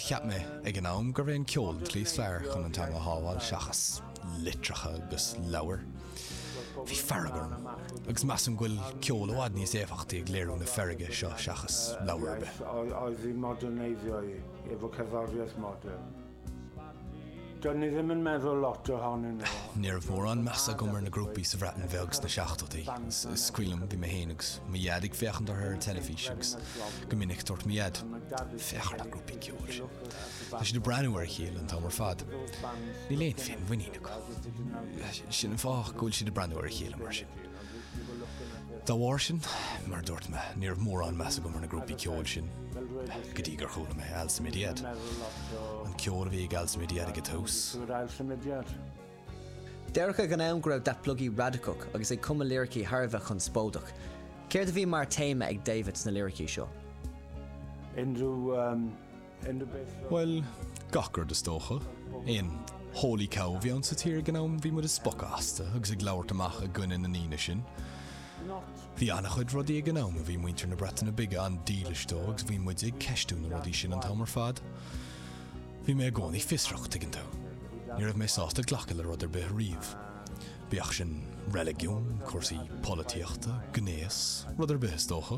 Cheap mé ag an am gurbh é an ceol an tslí is fearr chun an teanga a shábháil seachas litreacha agus leabhair. Bhí fearg orm, agus measaim go bhfuil ceol i bhfad níos éifeachtaí ag léiriú na feirge seo seachas leabhar ar bith. Ní raibh mórán meas agam ar na grúpaí sa Bhreatain Bheag sna seachtóidí. Scaoilim, bhí mé féin agus mo dhaid ag féachaint orthu ar an teilifís agus go minic dúirt mo dhaid, Féach ar na grúpaí ceoil sin. Tá siad ag breathnú ar a chéile an t-am ar fad. Níl aon féinmhuinín acu. Sin an fáth go bhfuil siad ag breathnú ar a chéile mar sin. Dá bharr sin, mar a dúirt mé, ní raibh mórán meas agam ar na grúpaí ceoil sin go dtí gur chuala mé Ail Symudiad. An ceol a bhí ag Ail Symudiad ag an tús. Dúradh ag an am go raibh Datblygu radacach agus ag cumadh liricí thar a bheith conspóideach. Céard a bhí mar téama ag David sna liricí seo? Bhuel, gach rud is dócha. Aon holy cow a bhí ann sa tír ag an am, bhí muid ag spochadh astu agus ag labhairt amach i gcoinne na ndaoine sin. Bhí an-chuid rudaí ag an am a bhí muintir na Breataine Bige an-dílis dóibh agus bhí muid ag ceistiú na rudaí sin an t-am ar fad. Bhí mé i gcónaí fiosrach, tuigeann tú. Ní raibh mé sásta glacadh le rud ar bith riamh. Bíodh sin reiligiún, cúrsaí polaitíochta, gnéas, rud ar bith is dócha.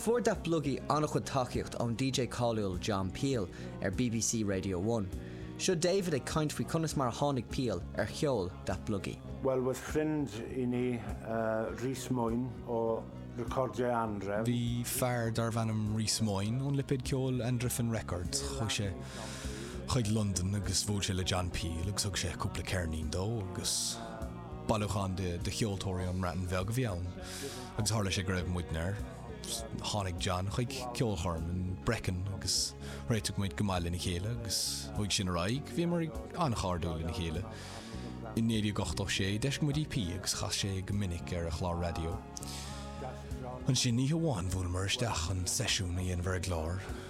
Fuair Datblygu an-chuid tacaíocht ón DJ cáiliúil John Peel ar bbc Radio One. Seo David ag caint faoi conas mar a tháinig Peel ar cheol Datblygu. Wel aeth ffrind i ni, Rhys Mwyn o Recordiau Anhrefn. Bhí fear darbh ainm Rhys Mwyn ón lipéad ceoil Anhrefn Records. Chuaigh sé chuig Londain agus bhuail sé le John Peel agus thug sé cúpla ceirnín dó agus. Bailiúchán de cheoltóirí ón mBreatain Bheag a bhí ann agus tharla sé go raibh muidne air. Tháinig John chuig ceolchoirm in Brecon agus réitigh muid go maith lena chéile agus uaidh sin ar aghaidh bhíomar an-chairdiúil lena chéile. I 1986 d'eisigh muid EP agus chas sé é go minic ar a chlár raidió. Ansin oíche amháin bhuaileamar isteach chun seisiún a dhéanamh ar an gclár,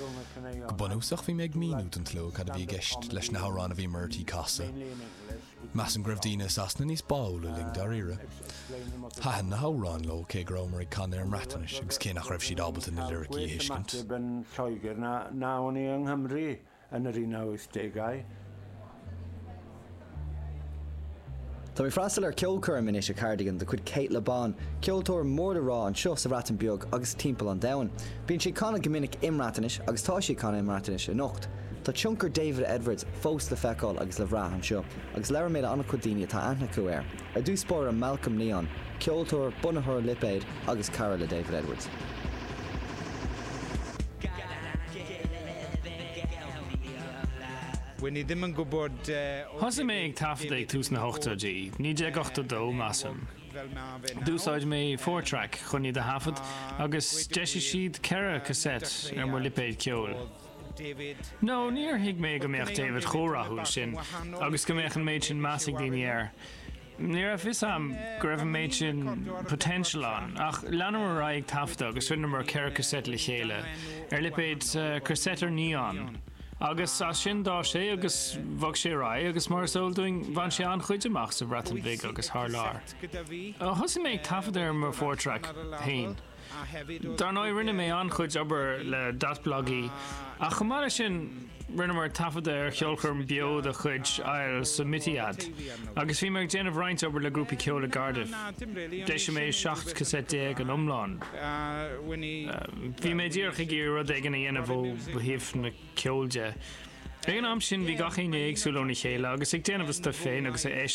Go bunúsach bhí mé ag míniú don tslua cad a bhí i gceist leis na hamhráin a bhí muid ag casadh. Measaim go raibh daoine i Sasana níos báúla linn dáiríre. Thaitin na hamhráin leo cé go rabhamar ag canadh i mBreatnais agus cé nach raibh siad ábalta na liricí a thuiscint. Táim ag freastal ar cheolchoirm anois i Cardigan de chuid Cate Le Bon, ceoltóir mór le rá anseo sa Bhreatain Bheag agus timpeall an domhain. Bíonn sí ag canadh go minic i mBreatnais agus tá sí ag canadh i mBreatnais anocht. Tá tionchar David Edwards fós le feiceáil agus le bhrath anseo agus labhair mé le an-chuid daoine atá aithne acu air. Ar dtús báire Malcolm Neon, ceoltóir, bunaitheoir lipéid agus cara le David Edwards. Thosaigh mé ag taifeadadh ag tús na hochtóidí, 1982, measaim. D'úsáid mé four track chun iad a thaifead agus d'eisigh siad ceithre cassette ar mo lipéad ceoil. No, níor thuig mé go mbeadh David chomh rathúil sin agus go mbeadh an méid sin meas ag daoine air. Ní raibh 'fhios a'm go raibh an méid sin potential ann, ach leanamar ar aghaidh ag taifeadadh agus rinneamar ceithre cassette le chéile, ar lipéad Casetiau Neon, agus as sin d'fhás sé agus bhog sé ar aghaidh agus mar is eol dúinn bhain sé an-chuid amach sa Bhreatain Bhig agus thar lear. Thosaigh mé ag taifeadadh ar mo four track féin. Dar ndóigh, rinne mé an-chuid obair le Datblygu, ach chomh maith le sin, rinneamar taifeadadh ar cheolchoirm beo de chuid Ail Symudiad, agus bhí mé ag déanamh roinnt obair le grúpaí ceoil i gCardiff. D'eisigh mé 17 cassette in iomlán. Bhí mé díreach ag iarraidh rud éigin a dhéanamh ó thaobh na ceoil de. Ag an am sin, bhí gach éinne éagsúil óna chéile agus ag déanamh a stuif féin agus a